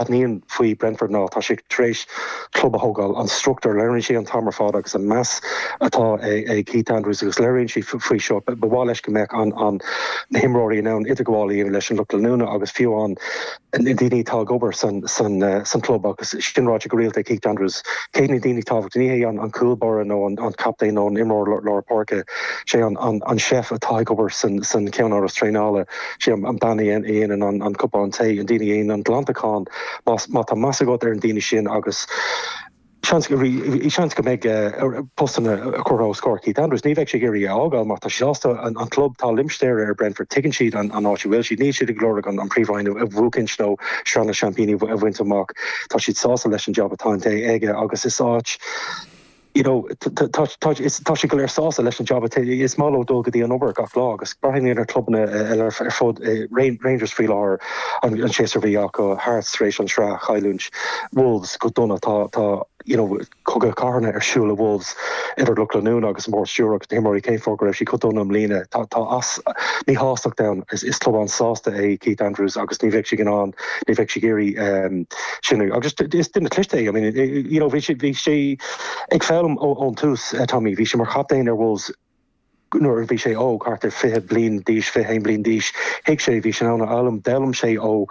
Aithním faoi Brentford ná tá siad tar éis club a thógáil. An struchtúr, léiríonn sí an t-am ar fad agus an meas atá ag Keith Andrews agus léiríonn sé faoi seo. Ba mhaith leis go mbeadh an na himreoirí in ann idirghabháil a dhéanamh leis an lucht leanúna agus fiú an na daoine atá ag obair san san san chlub agus sin ráite go rialta ag Keith Andrews. Cé hiad na daoine tábhachtacha? Ní hé an an cúl báire nó an an captaen nó an imreoir lár páirce. Sé an an an chef atá ag obair san san ceannáras traenála. Sé an bean a dhéanann an cupán tae, an daoine a dhéanann an glantachán. Má tá meas agat ar an daoine sin agus seans go mbeidh postanna curtha os comhair Keith Andrews. Ní bheidh sé ag iarraidh é a fhágáil mar tá sé sásta an club, tá limistéar ar Brentford, tuigeann siad an áit a bhfuil siad, níl siad ag lorg an Phríomhroinn a bhuachaint nó Sraith na Seaimpíní a bhaint amach. Tá siad sásta leis an jab atá déanta aige agus is áit. you know, tá siad go léir sásta leis an jab, is maith leo dul go dtí an obair gach lá agus breathnaigh ar chlubanna eile ar fud Rangers faoi láthair an séasúr a bhí acu, Hearts tar éis an tsraith chailliúint, Wolves go dona, tá you know, cogadh cathartha ar siúl le Wolves idir lucht leanúna agus an bord stiúrthóirí agus na himreoirí cén fáth go raibh siad chomh dona i mbliana, tá tá easpa sástacht ann, is club an-sásta é Keith Andrews agus ní bheidh siad in ann, ní bheidh siad ag iarraidh. sin agus is duine cliste é I mean you know bhí sé bhí sé ag foghlaim ón tús Tommy bhí sé mar chaptaen ar Wolves nuair a bhí sé óg thart ar 20 bliain d'aois 21 bliain d'aois thuig sé bhí sé in ann a fhoghlaim d'fhoghlaim sé ó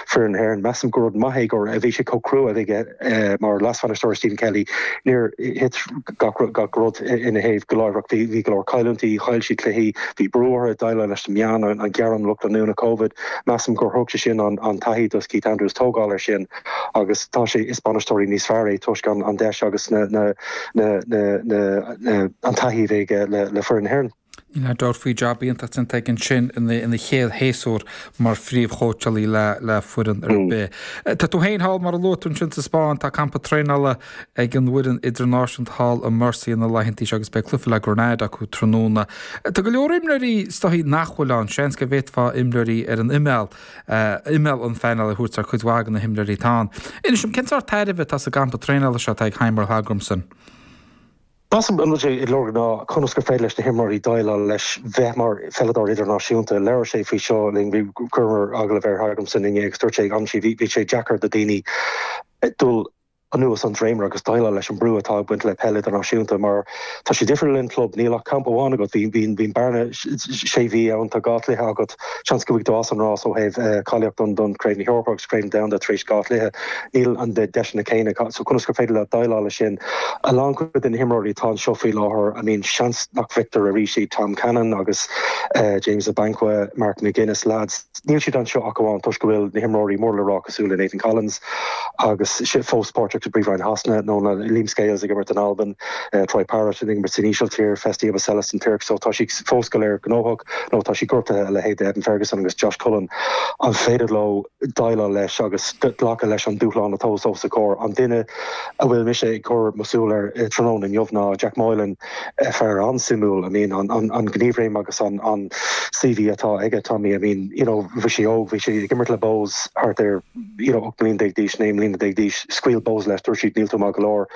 foireann na hÉireann measaim go rud maith é go raibh a bhí sé chomh cruaidh aige mar leasbhainisteoir Stephen Kenny níor thit gach gach rud ina thaobh go láithreach bhí bhí go leor cailliúintí chaill siad cluichí bhí brú orthu ag déileáil leis na meáin an an gearán lucht leanúna covid Measaim gur thug sé sin an taithí do Keith Andrews tógáil ar sin agus tá sé is bainisteoir níos fearr é toisc an deis agus an taithí a bhí aige le foireann na hÉireann. Níl aon dabht faoi jab iontach déanta aige ansin ina chéad shéasúr mar phríomhchóitseálaí le foireann ar bith. Tá tú féin thall mar a luaigh tú ansin sa Spáinn, tá campa traenála ag an bhfoireann idirnáisiúnta thall i Murcia na laethanta seo agus beidh cluiche le Grenada acu tráthnóna. Tá go leor imreoirí sciliúla nach bhfuil ann. Seans go bhféadfá imreoirí ar an imeall, imeall an phainéil a thabhairt ar chuid mhaith de na himreoirí atá ann. Inis dom, cén sórt tairbhe atá sa gcampa traenála seo atá ag Heimir Hallgrimsson? An rud atá sé ag lorg ná conas gur féidir leis na himreoirí déileáil leis bheith mar pheileadóir idirnáisiúnta. Labhair sé faoi seo linn, bhí, chuireamar agallamh ar Hallgrimsson inné agus dúirt sé, ansin, bhí sé deacair do daoine dul, anuas an dréimire agus déileáil leis an brú atá ag baint le peil idirnáisiúnta mar tá sé difriúil ón club, níl ach campa amháin agat, bíonn bearna sé mhí ann, tá dhá chluiche agat, seans go mbeidh tú as an rás ó thaobh cáilíocht don Craobh na hEorpa agus Craobh Domhanda tar éis dhá chluiche, níl an deiseanna céanna, so conas gur féidir leat déileáil le sin? A lán cuid de na himreoirí atá anseo faoi láthair, I mean seans nach bhfeicfear arís iad, Tom Cannon agus James Abankwah, Mark McGuinness, leaids. Níl siad anseo ach amháin toisc go bhfuil na himreoirí mór le rá cosúil le Nathan Collins agus araile fós páirteach sa bPríomhroinn Shasana, nó na Liam Scales ag imirt in Albain, Troy Parrott ag imirt san Ísiltír, Festy Ebosele sa Tuirc, so tá siad fós go léir gnóthach nó tá siad gortaithe, a leithéid d'Evan Ferguson agus Josh Cullen. An féidir leo déileáil leis agus glacadh leis an dúshlán atá os a gcomhair? An duine a bhfuil mise ag cur mo shúil air tráthnóna inniu ná Jack Moylan, fear an-suimiúil, I mean an an gníomhréim agus an an CV atá aige Tommy, I mean you know bhí sé óg, bhí sé ag imirt le Bohs thart ar you know 18 mbliana d'aois, 19 mbliana d'aois, scaoil Bohs leis, dúirt siad níl tú maith go leor.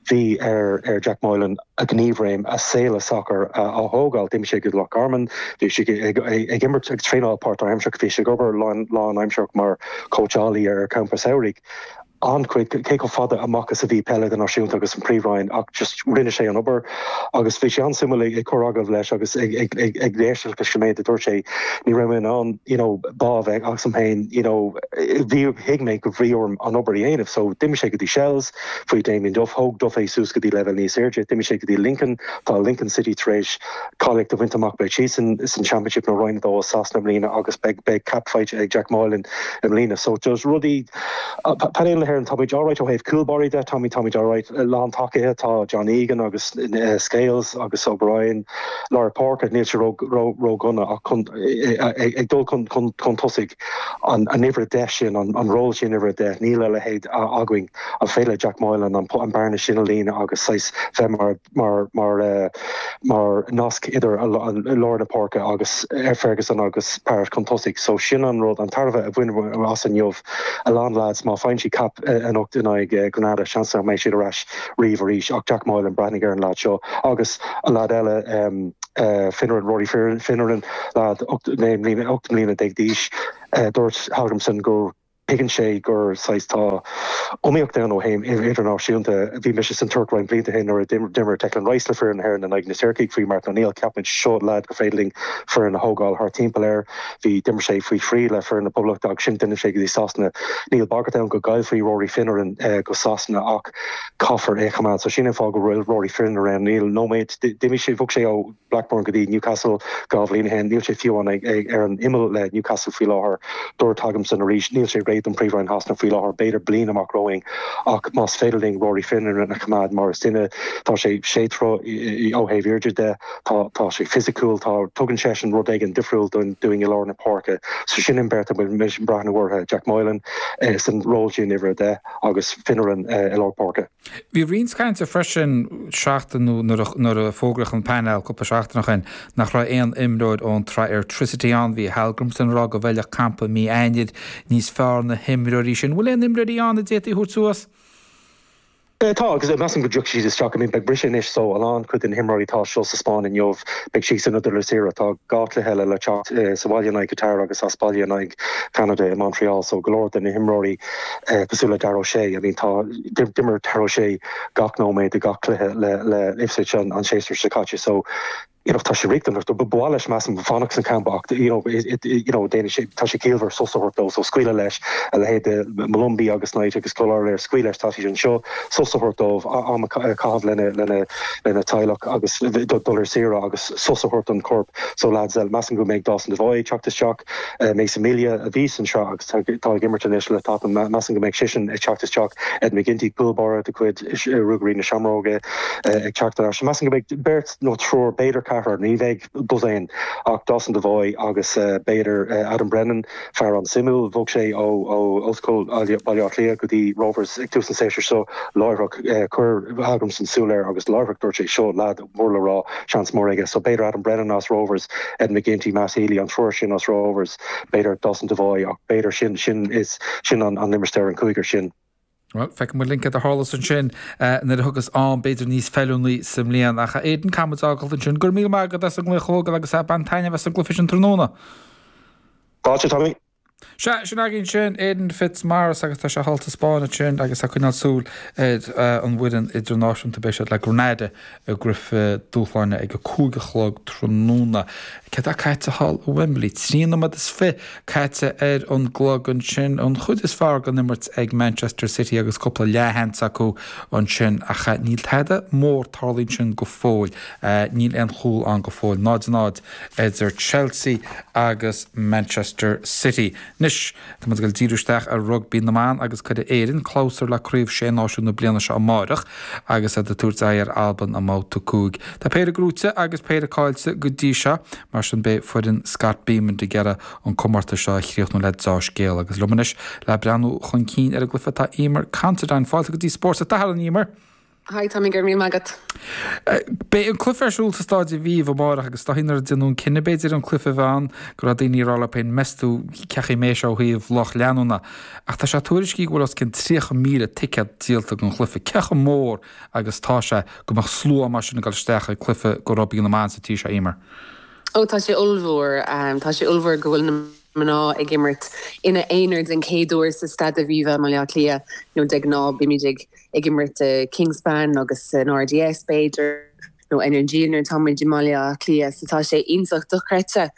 Bhí ar ar Jack Moylan a ghníomhréim, a shaol sacair a a thógáil, d'imigh sé go Loch Garman, bhí sé ag ag ag imirt ag traenáil páirtaimseartha, bhí sé ag obair lán lánaimseartha mar chóitseálaí ar champa samhraidh. an chuid, cé chomh fada amach is a bhí peil idirnáisiúnta agus an Príomh-Roinn ach just rinne sé an obair agus bhí sé an-suimiúil ag cur agallamh air agus ag éisteacht leis an méid a dúirt sé, ní raibh mé in ann you know bá a bheith agam dom féin you know bhí, thuig mé go raibh orm an obair a dhéanamh so d'imigh sé go dtí Shels faoi Damien Duff, thóg Duff é suas go dtí leibhéal níos airde, d'imigh sé go dtí Lincoln, tá Lincoln City tar éis cáilíocht a bhaint amach beidh siad san san Championship nó Roinn 2 i Sasana i mbliana agus beidh beidh cap faighte ag Jack Moylan i mbliana so just rudaí Painéal na hÉireann, Táimid alright ó thaobh cúl báire de, táimid, táimid alright, lántacaithe, tá John Egan agus Scales agus O'Brien lár páirce, níl sé ró, ró, ródhona ach chun, ag dul chun, chun, chun tosaigh, an, an uimhir a deich sin, an, an ról sin, uimhir a deich, níl a leithéid againn, an féidir le Jack Moylan an, an bearna sin a líonadh agus saghas bheith mar. mar nasc idir lár na páirce agus Ferguson agus Parrott chun tosaigh so sin an rud an tairbhe a bhainfear as inniu a lán lads má faigheann siad cap anocht in aghaidh Grenada seans nach mbeidh siad ar ais riamh arís ach Jack Moylan breathnaigh ar an lad seo agus an lad eile Finneran Rory Finneran lad ocht mbliana déag d'aois dúirt Hallgrimsson go Tuigeann sé gur saghas, tá iomaíocht ann ó thaobh idirnáisiúnta. Bhí mise san Tuirc roinnt blianta shin nuair a d'imir Declan Rice le foireann na hÉireann in aghaidh na Tuircigh faoi Martin O'Neill. Cheap muid, seo lad gur féidir linn foireann a thógáil thart timpeall air. Bhí, d'imir sé faoi thrí le foireann na Poblachta agus ansin d'imigh sé go dtí Sasana. Níl bagairt ann go gcaillfí Rory Finneran go Sasana ach caithfear é a choimeád. So sin an fáth go bhfuil Rory Finneran, níl nóiméad, d'imigh sé, bhog sé ó, Blackburn go dtí Newcastle dhá bhliain ó shin. Níl sé fiú ann ar an imeall le Newcastle faoi láthair. Dúirt, Hallgrimsson arís, níl sé réidh don Phríomhroinn Shasana faoi láthair, b'fhéidir bliain amach romhainn. Ach más féidir linn Rory Finneran a choimeád mar is duine, tá sé sé troithe a dó ó thaobh airde de, tá sé fisiciúil, tugann seisean rud éigin difriúil dúinn i lár na páirce. So sin an bheirt a bhfuil mise ag breathnú orthu, Jack Moylan san ról sin, uimhir a deich, agus Finneran i lár páirce. Bhí roinnt cainte an tseachtain, nó nuair a fógraíodh an painéal cúpla seachtain ó shin nach raibh aon imreoir ón tSraith Airtricity ann. Bhí Hallgrímsson ag rá go bhfeilfeadh campa mí Eanáir níos fearr do na himreoirí sin. An bhfuil aon imreoirí ann a d'fhéadfaí a thabhairt suas? Tá agus measaim go dtiocfaidh siad isteach. I mean. Beidh briseadh anois so a lán acu de na himreoirí atá anseo sa Spáinn inniu beidh siadsan ag dul ar saoire. Tá dhá chluiche eile le teacht sa bhaile in aghaidh Qatar agus as baile in aghaidh Cheanada i Montreal so go leor de na himreoirí cosúil le Dara O'Shea, I mean tá. D'imir Dara O'Shea gach nóiméad de gach cluiche le Ipswich an séasúr seo caite so you know tá sé riachtanach dó. Ba mhaith leis measaim fanacht sa champa ach you know you know déanann sé tá sé ciallmhar sos a thabhairt dó so scaoileadh leis a leithéid de Molumby agus Knight agus Kelleher scaoil leis tá siad anseo sos a thabhairt dóibh, am a chaitheamh lena lena lena teaghlach agus dul ar saoire agus sos a thabhairt don chorp so lads measaim go mbeidh Dawson Devoy ag teacht isteach. Mason Melia a bhí sa tsraith agus atá ag imirt anois le Tottenham, measaim go mbeidh sisean ag teacht isteach. Ed McGinty, cúl báire de chuid Ruagairí na Seamróige ag teacht ar ais. Measaim go mbeidh beirt nó triúr, b'fhéidir ceathrar, ní bheidh dosaen ach Dawson Devoy agus b'fhéidir Adam Brennan, fear an-suimiúil. Bhog sé ó Ollscoil Bhaile Átha Cliath go dtí Rovers ag tús an séasúir seo láithreach. Chuir Hallgrímsson súil air agus láithreach dúirt sé, 'Seo lad. mór le rá, seans mór aige. So b'fhéidir Adam Brennan as Rovers, Ed McGinty, Matt Healy, an triúr sin as Rovers, b'fhéidir Dawson Devoy ach b'fhéidir sin, sin is, sin an an limistéar, an cúigear sin. Bhuel, feicfidh muid linn céard a tharlós ansin nuair a thiocfas am b'fhéidir níos feiliúnaí sa mbliain. Ach a Aidan, caithfidh muid é a fhágáilt ansin. Go raibh míle maith agat as an tuairisc agus bain taitneamh as an gcluife sin tráthnóna. Fáilte Tommy. Sea, sin againn sin Aidan Fitzmaurice agus tá sé thall sa Spáinn ansin agus ag coinneáil súil ar an bhfoireann idirnáisiúnta. Beidh siad le Grenada i gcluife dúshláin ag a cúig a chlog tráthnóna. Céard atá ag tarlú thall i Wembley? Trí nóiméad is fiche caite ar an gclog ansin. An chuid is fearr den imirt ag Manchester City agus cúpla leathsheans acu ansin ach níl tada mór tarlaithe ansin go fóill. Níl aon chúl ann go fóill. 0 0. idir Chelsea agus Manchester City. Anois, tá muid ag dul ag díriú isteach ar rugbaí na mban agus cuirfidh Éire clabhsúr le Craobh Sé Náisiún na bliana seo amáireach agus iad ag tabhairt aghaidh ar Albain i mBabhta 5. Tá péire gnóite agus péire caillte go dtí seo, mar sin beidh foireann Scott Bemand ag iarraidh an comórtas seo a chríochnú le deá-scéal. Agus liom anois le breathnú chun cinn ar an gcluiche tá Eimear Considine. Fáilte go dtí Spórt an tSathairn, a Eimear! Hi Tommy, go raibh míle maith agat. Beidh an cluiche ar siúl sa Staid Aviva amáireach agus is dóigh nuair a deineadh an cinneadh b'fhéidir an cluiche a bheith ann go raibh daoine ag rá leo féin meas tú cén chaoi a mbeidh sé ó thaobh lucht leanúna ach tá sé tuairiscithe go bhfuil os cionn 30,000 ticéad díolta don chluiche. Cé chomh mór agus tá sé go mbeadh slua mar sin ag dul isteach ag cluiche do rugbaí na mban sa tír seo, Eimear? Oh tá sé ollmhór. Tá sé ollmhór go bhfuil na mná ag imirt ina aonar den chéad uair sa Staid Aviva i mBaile Átha Cliath you know de ghnáth bímid ag ag imirt i Kingspan agus san RDS b'fhéidir nó ar an Energia nuair atá muid i mBaile Átha Cliath so tá sé iontach dochreidte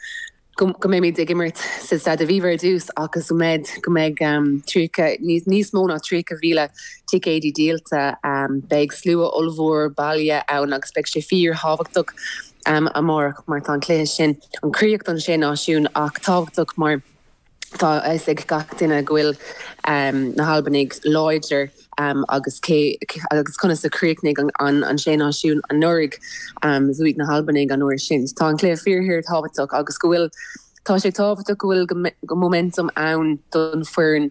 go mbeimid ag imirt sa Staid Aviva ar dtús ach go mbeidh, go mbeidh 30, níos mó ná 30,000 ticéad díolta, beidh slua ollmhór baile ann agus beidh sé fíorthábhachtach amárach mar tá an cluiche sin, ag críochnú an Sé Náisiún ach tábhachtach mar. Tá a fhios ag gach duine go bhfuil na hAlbanaigh láidir agus, agus conas a chríochnaigh an Sé Náisiún anuraidh, bhuaigh na hAlbanaigh an uair sin. Tá an cluiche fíor-, fíor tábhachtach agus go bhfuil tá sé tábhachtach go bhfuil go momentum ann don foireann,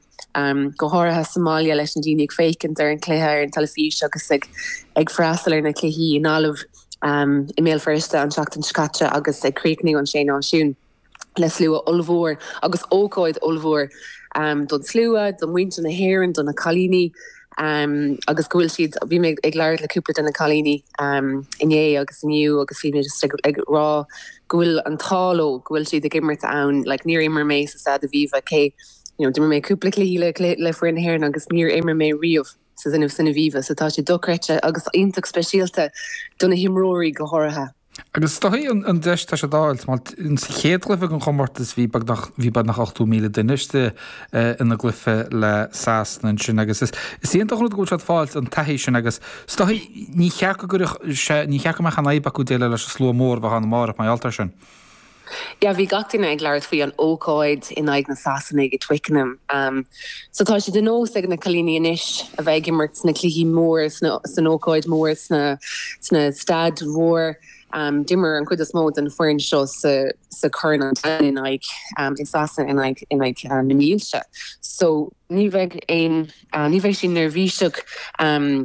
go háirithe sa bhaile leis na daoine ag féachaint ar an chluiche ar an teilifís agus ag ag freastal ar na cluichí i nGaillimh, i mBéal Feirste an tseachtain seo caite agus ag críochnaigh an Sé Náisiún. le slua ollmhór agus ócáid ollmhór don slua, do mhuintir na hÉireann, do na cailíní agus go bhfuil siad, bhí mé ag labhairt le cúpla de na cailíní inné agus inniu agus bhí mé just ag rá go bhfuil an t-ádh leo go bhfuil siad ag imirt ann, like níor imir mé sa Staid Aviva cé, you know, d'imir mé cúpla cluichí le, le foireann na hÉireann agus níor imir mé riamh sa, san Aviva so tá sé dochreidte agus iontach speisialta do na himreoirí go háirithe. Agus is dóichí an deis atá siad a fháilt. Mar sa chéad chluiche den chomórtas bhí beagnach ochtó míle duine istigh ina gcluiche leis na Sasanaigh ansin agus is iontach an rud go bhfuil siad ag fáilt an taithí sin agus is dóichí ní cheart go gcuirfeadh sé, ní cheart go mbeadh aon fhadhb acu déileáil leis an slua mór a bheidh ann amárach, mar gheall air sin. Yeah bhí gach duine ag labhairt faoi an ócáid in aghaidh na Sasanaigh i Twickenham. So tá sé de nós ag na cailíní anois a bheith ag imirt sna cluichí mór san ócáid mór sna staid mhór. D'imir an chuid is mó den foireann seo sa, sa Chorn an Domhain in aghaidh i Sasana, in, in aghaidh na mílte. So. ní bheidh aon, ní bheidh siad neirbhíseach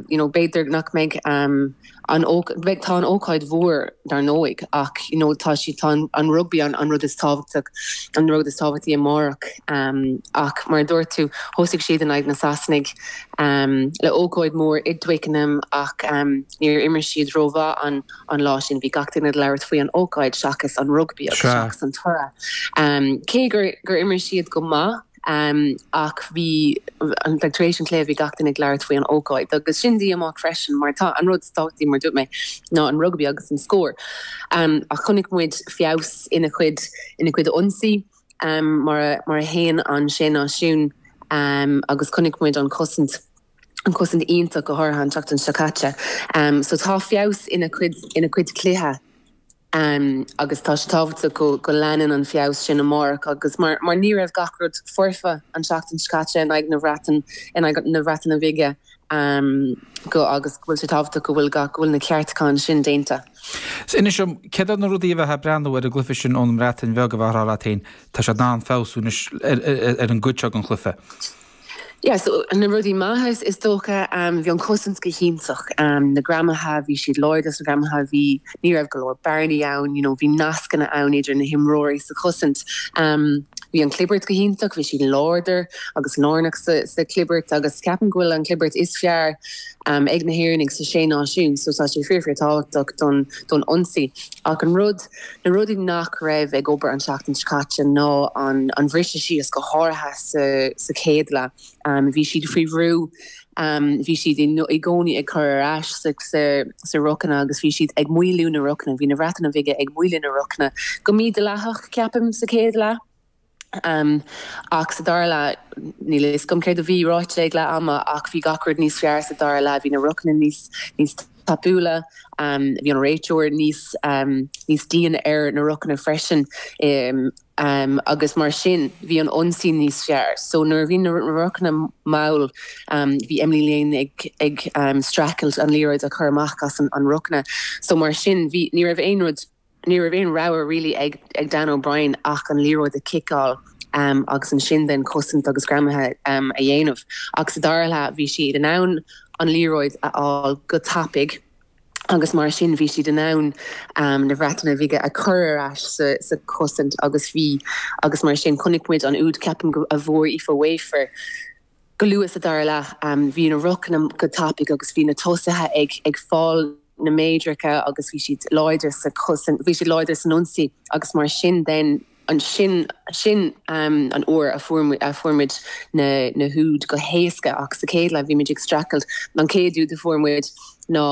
you know b'fhéidir nach mbeidh an bheidh tá an ócáid mhór dar ndóigh ach you know tá sé tá an rugbaí an an rud is tábhachtach an rud is tábhachtaí amárach ach mar a dúirt tú thosaigh siad in aghaidh na Sasanaigh le ócáid mhór i dTwickenham ach níor imir siad rómhaith an an lá sin bhí gach duine ag labhairt faoi an ócáid seachas an rugbaí agus seachas an toradh cé gur gur imir siad go maith ach bhí, like tar éis an cluiche bhí gach duine ag labhairt faoi an ócáid agus sin díomách freisin mar tá, an rud is tábhachtaí mar dúirt mé ná an rugbaí agus an scór ach chonaic muid feabhas ina chuid, ina chuid ionsaí mar a, mar a théann an Sé Náisiún agus chonaic muid an chosaint, an chosaint iontach go háirithe an tseachtain seo caite so tá feabhas ina chuid, ina chuid cluiche. agus tá sé tábhachtach go leanann an feabhas sin amárach agus mar ní raibh gach rud foirfe an tseachtain seo caite in aghaidh na Breatain in aghaidh na Bhreataine Bhige go agus go bhfuil sé tábhachtach go bhfuil gach go bhfuil na ceartacháin sin déanta. Sea, inis dom, céard iad na rudaí ó bheith ag breathnú ar an gcluiche sin ón mBreatain Bheag a mbeifeá ag rá leat féin, tá siad in ann feabhsú anois ar an gcuid seo den chluiche? Yeah, so na rudaí maithe is dócha. Bhí an cosaint go hiontach. Na greamaithe, bhí siad láidir sna greamaithe. Bhí, ní raibh go leor bearnaí ann, you know, bhí nascanna ann idir na himreoirí sa chosaint. Bhí an clibirt go hiontach, bhí siad láidir agus lárnach sa chlibirt agus ceapaim go bhfuil an chlibirt is fearr ag na hÉireannaigh sa Sé Náisiún so tá sé fíor, fíor tábhachtach don ionsaí. Ach an rud. Na rudaí nach raibh ag obair an tseachtain seo caite ná an briseadh síos, go háirithe sa chéad leath. Bhí siad faoi bhrú, bhí siad i gcónaí ag cur ar ais sa rochanna agus bhí siad ag moilliú na rochanna. Bhí na Bhreataine Bhige ag moilliú na rochanna go mídhleathach, ceapaim, sa chéad leath. Ach sa dara leath, níl a fhios agam céard a bhí ráite ag leath ama ach bhí gach rud níos fearr sa dara leath, bhí na rochanna níos níos tapúla, bhí an réiteoir níos níos dian ar na rochanna freisin agus mar sin bhí an ionsaí níos fearr. So nuair a bhí na rochanna mall bhí Emily Lane ag streachailt an liathróid a chur amach as an rochanna so mar sin ní raibh aon rud Ní raibh aon rogha really ag Dannah O'Brien ach an liathróid a chiceáil agus ansin then cosaint agus greamaithe a dhéanamh. Ach sa dara leath bhí siad in ann an liathróid a fháil go tapaidh agus mar sin bhí siad in ann na Bhreataine Bhige a chur ar ais sa chosaint agus bhí agus mar sin chonaic muid an úd ceapaim a bhfuair Aoife Wafer go luath sa dara leath. Bhí na rochanna go tapaidh agus bhí na tosaithe ag fáil na méadracha agus bhí siad láidir sa, bhí siad láidir san ionsaí agus mar sin then, sin sin an uair a fuair a fuair muid na na húid go héasca ach sa chéad leath bhí muid ag streachailt. An chéad úd a fuair muid ná.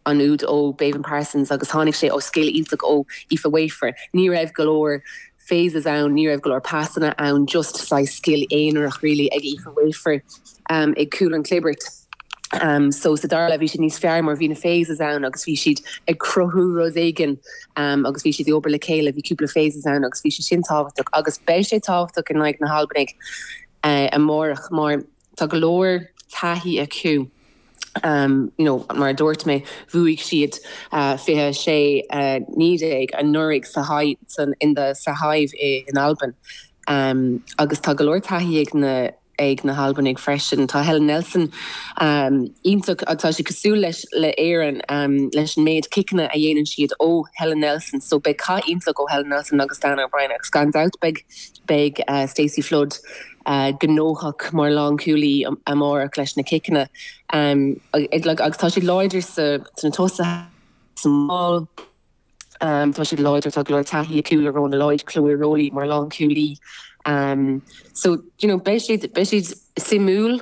an úd ó Beibhinn Parsons agus tháinig sé ó scil iontach ó Aoife Wafer. Ní raibh go leor phases ann, ní raibh go leor passanna ann, just saghas scil aonarach really ag Aoife Wafer ag cúl an chlibirt. So sa dara leath bhí siad níos fearr mar bhí na phases ann agus bhí siad ag cruthú rud éigin agus bhí siad ag obair le chéile, bhí cúpla phases ann agus bhí sé sin tábhachtach agus beidh sé tábhachtach in aghaidh na hAlbanaigh amárach mar Tá go leor taithí acu, you know, mar a dúirt mé, bhuaigh siad 26, 19 anuraidh sa sa Hive in Albain agus tá go leor taithí ag na ag na hAlbanaigh freisin. Tá Helen Nelson iontach, tá sí cosúil leis le Éirinn leis an méid ciceanna a dhéanann siad ó Helen Nelson, so beidh cath iontach ó Helen Nelson agus Dannah O'Brien agus gan dabht beidh Beidh Stacey Flood gnóthach mar lánchúlaí amárach leis na ciceanna agus tá siad láidir sna tosaithe sa maul. Tá siad láidir, tá go leor taithí acu le Rhona Lloyd, Chloe Rollie mar lánchúlaí. So you know, beidh siad, beidh siad suimiúil.